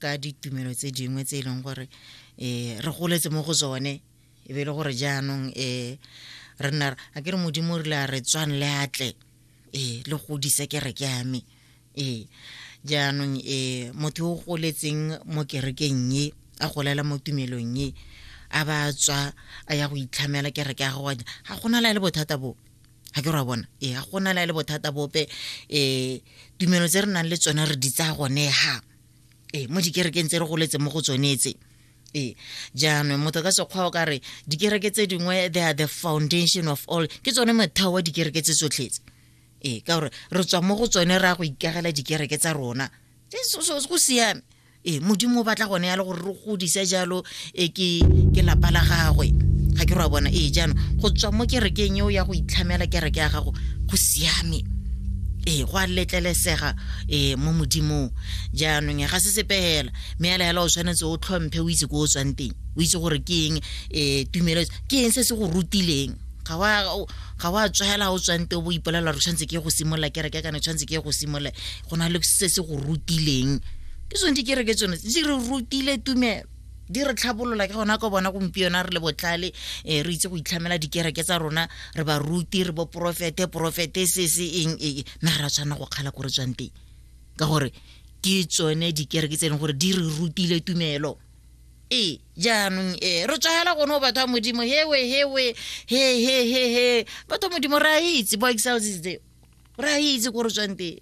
ka ditumelo tse dingwe tse e leng gore um re goletse mo go tsone e be e le gore jaanong um re nna a ke re modimo o rile a re tswang le atle ee le godise kereke ya me ee jaanong um motho o goletseng mo kerekeng e a golela mo tumelong e a ba tswa a ya go itlhamela kereke ya gago ga gona la le bothata bo ga ke re wa bona ee ga gona la le bothata bope um tumelo tse re nang le tsone re di tsaya gone ga ee mo dikerekeng tse re goletse mo go tsone tse ee jaanong motho ka sekgwa o ka re dikereke tse dingwe they are the foundation of all ke tsone motheo wa dikereke tse tsotlhetse ee ka gore re tswa mo go tsone re ya go ikagela dikereke tsa rona go siame ee modimo o batla gone ya le gore re godise jalo e ke ke lapa la gagwe ga ke ra bona ee jaanong go tswa mo kerekeng eo ya go itlhamela kereke ya gago go siame ee go a letlelesega ee mo modimong jaanong ga se sepe fela mme ela fela o tshwanetse o tlhomphe o itse ko o tswang teng o itse gore ke eng um tumelo ke eng se se go rutileng ga wa tswela o tswang teng o bo ipolelela gore tshwanetse ke go simolola kereke kana tshwanetse ke go simolola go na le se se go rutileng ke tsone dikereke tsone di re rutile tumelo di re tlhabolola ke gona ko bona gompieno re le botlhale um re itse go itlhamela dikereke tsa rona re ba ruti re bo porofete porofete se se eng ee mme re ra tshwanela go kgala ko re tswang teng ka gore ke tsone dikereke tse e leng gore di re rutile tumelo ee jaanong ee re tswagela gone go batho ba modimo hewe hewe he he he he batho ba modimo re a itse bo excelsis tseo o re a itse ko re tswang teng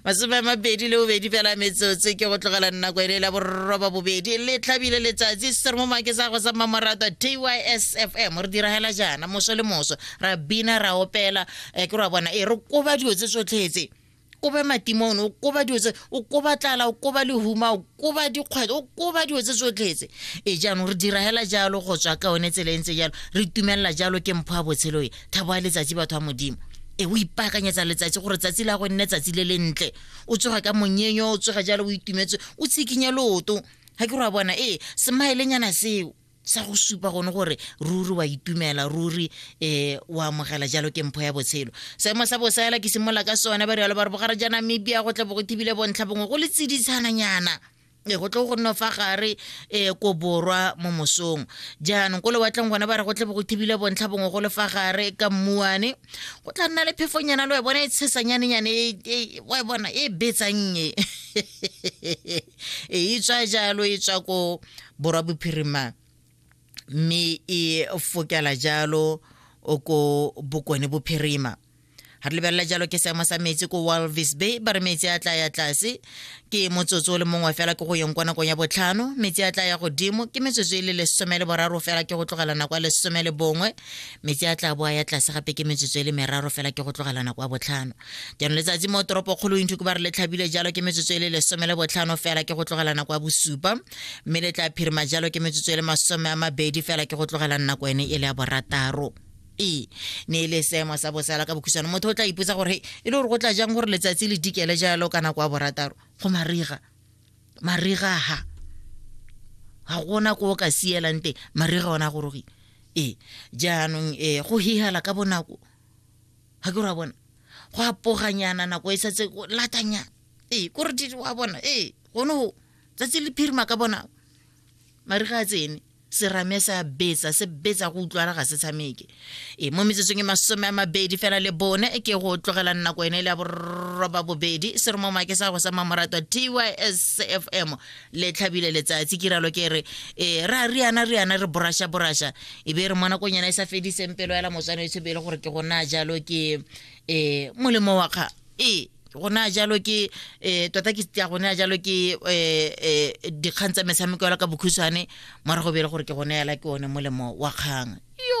masome a mabedi le bobedi fela metsotse ke go tlogela nako ele la borroba bobedi le tlhabile letsatsi se re mo make sa go sa mmamoratwa tysfm re diragela jaana moso le moso ra bina ra opela um ke ra bona e re koba dilo tse tsotlhetse kobe matimone o koba dilo tse o koba tlala o koba lehuma o koba dikgwetlho o koba dilo tse tsotlhetse e jaanong re dira hela jalo go tswa ka one tsela e ntse jalo re itumelela jalo ke mpho ya botshelo e thabo ya letsatsi batho ba modimo e o ipaakanyetsa letsatsi gore tsatsi la go nne tsatsi le lentle o tsoga ka monyenyo o tsoga jalo o itumetse o tshikinye loto ga ke re wa bona ee semaelenyana seo sa go supa gone gore ruri wa itumela ruri um o amogela jalo ke mpho ya botshelo seemo sa bosela ke simolola ka sone ba rialo ba re bogare ja namibia go tle bo go thibile bontlha bongwe go le tseditshananyana e go tle go nno fa gare e ko borwa mo mosong jaanong ko lewatleng gone ba re go tle bo go thibile bontlha bongwe go le fa gare ka mmuane go tla nna le phefonyana le wa bona e tshesanyanenyane wa bona e betsannye e tswa jalo e tswa ko Borwa Bophirima mme e fokela jalo ko Bokone Bophirima. ga re lebelela jalo ke seemo sa metsi ko walvis bay ba re metsi a tla ya tlase ke motsotso o le mongwe fela ke go yeng kwa nakong ya botlhano metsi a tla ya godimo ke metsotso e le lesome le boraro fela ke go tlogela nako ya lesome le bongwe metsi a tla boa ya tlase gape ke metsotso e le meraro fela ke go tlogela nako ya botlhano jaanong letsatsi mo toropokgolong inthuko ba re le tlhabile jalo ke metsotso e le lesome le botlhano fela ke go tlogela nako ya bosupa mme le tla phirima jalo ke metsotso e le masome a mabedi fela ke go tlogela nako ene e le ya borataro e ne e le seemo sa bosala ka bokhusano motho o tla ipotsa gore e le gore go tla jang gore letsatsi le dikele jalo ka nako ya borataro go mariga mariga ha ga gona ko o ka sielang teng mariga ona a gorogile ee jaanong ee go hihela ka bonako ga ke ra bona go apoganyana nako e setse latanyana ee kore wa bona ee gone go tsatsi le phirima ka bona mare ga a tsene serame sa betsa se betsa go utlwala ga se tshameke e mo metsotsong e masome a mabedi fela le bone ke go tlogela nako ene le ya borroba bobedi se re mo make sa go sa mamoratwa tys f m le tlhabile letsatsi ke ralo ke re e ra riana riana re borasha borasha e be re mo nakong yana e sa fediseng pelo ela motswana e tshebe e le gore ke gona jalo ke um molemo wa kgang ee go naya jalo ke um tota ke ya go naya jalo ke um dikgang tsa metshameko yalo ka bokhutshwane morago bele gore ke go neela ke one molemo wa kgang yo